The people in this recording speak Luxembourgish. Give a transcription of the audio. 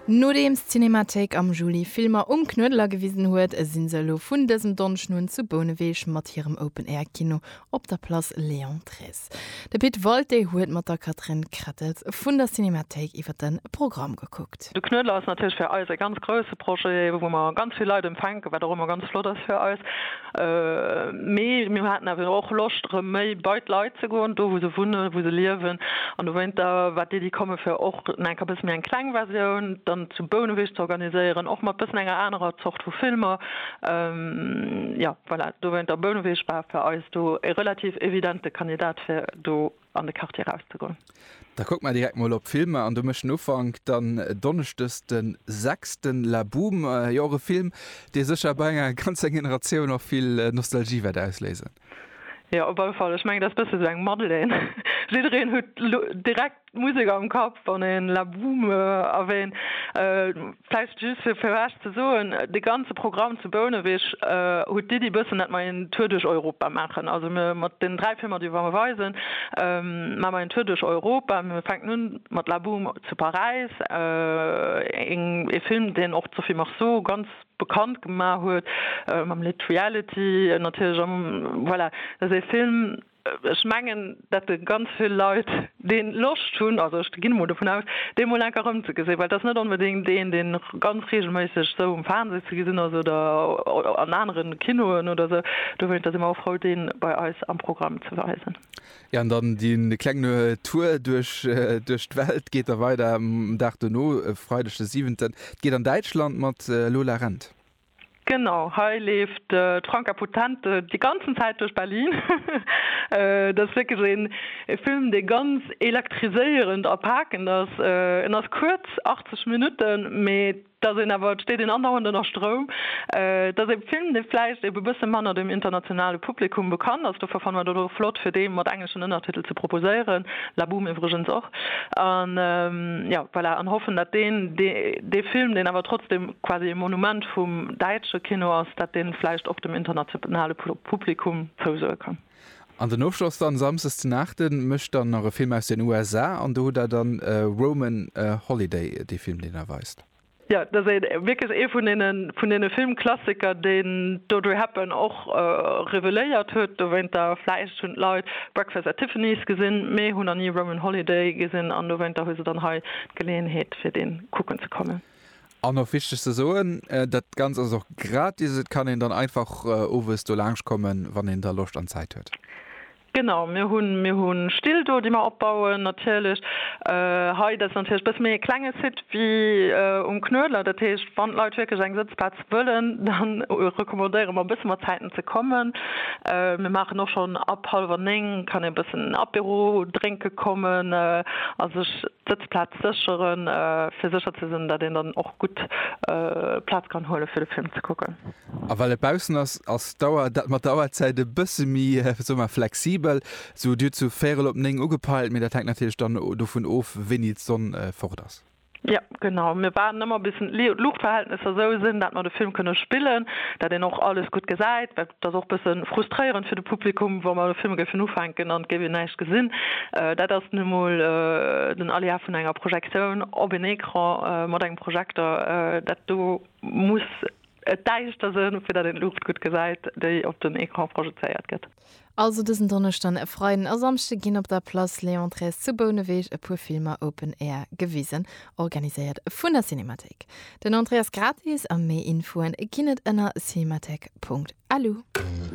Nodeems d'Cinémathéik am Juli Filmer um Knuedeler gewisen huet, si se elo vun dësem Donneschden un zu Bouneweg mat hirem Open Air Kino op der Place Léon Trees. De Pit Walté huet mat der Catherine Krettels vun der Cinémathéik iwwer de Programm gekuckt. De Knuedler ass natierlech fir eis e ganz grousse Projet, wou mer ganz vill Leit empfänken, wat och ëmmer ganz flott ass fir eis. Mee mir haten awer och Loscht, erëm méi bei d'Leit ze goen, do wou se wunnen, wou se liewen. An dowéinter war d'Iddi komme fir och enker e bësse méi eng kleng Versioun dann zu Bouneweg ze organiséieren, och mat e bëssen enger anerer Zort vu Filmer. Jo, voilà, dowéinter Bouneweg war fir eis do e relativ evidente Kandidat, fir do an de Quartier rauszegoen. Da kucke mer direkt mol op d'Filmer an do mécht en Ufank dann donneschdes de sechsten La Boum, jo och e Film, dee sécher bei enger ganzer Generatioun och vill Nostalgie wäert ausléisen. Jo, op alle Fall, ech mengen, dat ass e bësse sou eng Madeleine. Jiddereen huet direkt d'Musek am Kapp, wann een La Boum erwähnt. Vläicht just fir fir Iech ze soen, de ganze Programm zu Bouneweg huet d'Iddi e bëssen, dat mer een Tour duerch Europa maachen. Also mir mat deenen dräi Filmer, déi mer weisen, maache mer een Tour duerch Europa. Mir fänken un mat La Boum zu Paräis, een ee Film, deen och d'Sophie Marceau ganz bekannt gemaach huet mam Lidd Reality natierlech. Voilà, dat ass ee Film, Ech mengen, dat de ganz vill Leit dee Loscht hunn, also ech ginn emol dovun aus, dee mol enker erëmzegesinn, well et ass net onbedéngt een, deen ganz reegelméisseg esou um Fernseh ze gesinn ass oder an anere Kinoen oder esou. Dowéinst si mer och frou, dee bei eis am Programm ze weisen. Jo, an dann dee klengen Tour duerch d'Welt geet da weider um Dag dono, e Freideg de siwenten. Et geet an Däitschland mat Lola Rent. Genau, hei leeft d'Franka Potente déi ganzen Zäit duerch Berlin. Et ass wierklech een Film, dee ganz elektriséierend a pakend ass. En ass kuerz, 80 Minutten, mee et ass een awer, et steet een andauernd ënner Stroum. Et ass ee Film, dee vläicht e bësse manner dem internationale Publikum bekannt ass, dofir fanne mer dat och flott, fir dee mat engleschen Ënnertitel ze proposéieren, La Boum iwwregens och. An jo, voilà, an hoffen, datt deen, dee Film, deen awer trotzdem quasi e Monument vum däitsche Kino ass, datt dee vläicht och dem internationale Publikum zousoe kann. An den Ofschloss dann, Samsdes den Aachten, mécht dann nach e Film aus den USA, an do hutt Der dann Roman Holiday, dee Film, deen Der weist. Jo, et ass wierklech ee vun deene vun deene Filmklassiker, deen d'Audrey Hepburn och reveléiert huet. Dowéinter, vläicht hunn d'Leit Breakfast at Tiffany's gesinn, mee hunn nach ni Roman Holiday gesinn an dowéinter hu se dann hei d'Geleeënheet, fir dee kucken ze kommen. An och wichteg ze soen, Dat Ganzt ass och gratis. Et kann een dann einfach owes do laanschtkommen, wann een da Loscht an Zäit huet. Genau, mir hunn, mir hu Still do, déi mer opbauen natierlech. Hei, dat ass natierlech e bësse méi e klenge Site wéi um Knuedler. Dat heescht, wann d'Leit wierklech eng Sëtzplaz wëllen, da recommandéiere mer e bësse mat Zäiten ze kommen. Mir maachen och schonn ab hallwer néng kann ee e bëssen Apéro drénke kommen a sech d'Sëtzplaz sécheren, fir sécher ze sinn, datt een dann och gutt Plaz kann huele fir de Film ze kucken. A well et baussen ass, ass d'Auer, dat mat der Auerzäit e bësse méi, soe mer, flexibel. Sou Dir hutt sou véierel op néng ugepeilt, mee dat hänkt natierlech dann dovun of, wéini d'Sonn fort ass. Jo, genau. Mir waarden ëmmer bis d'Luuchtverhältnesser sou sinn, dat mer de Film kënne spillen, dat een och alles gutt gesäit. Well et ass och e bësse frustréierend fir de Publikum, wa mer de Film géifen ufänken an et géif een näischt gesinn. Dat ass nu emol den Aléa vun enger Projektioun op een Ecran mat engem Projekter. Dat do muss Et däischt der Sënn, fir datt een d'Luucht gutt gesäit, déi op den Ecran projezéiert gëtt. Also dësen Donneschden, e Freiden a Samschde ginn op der Place Léon Thres zu Bouneweg e puer Filmer Open Air gewisen, organiséiert vun der Cinémathéik. Den Entrée ass gratis a méi Infoen ginn et ënner cinémathéik.lu.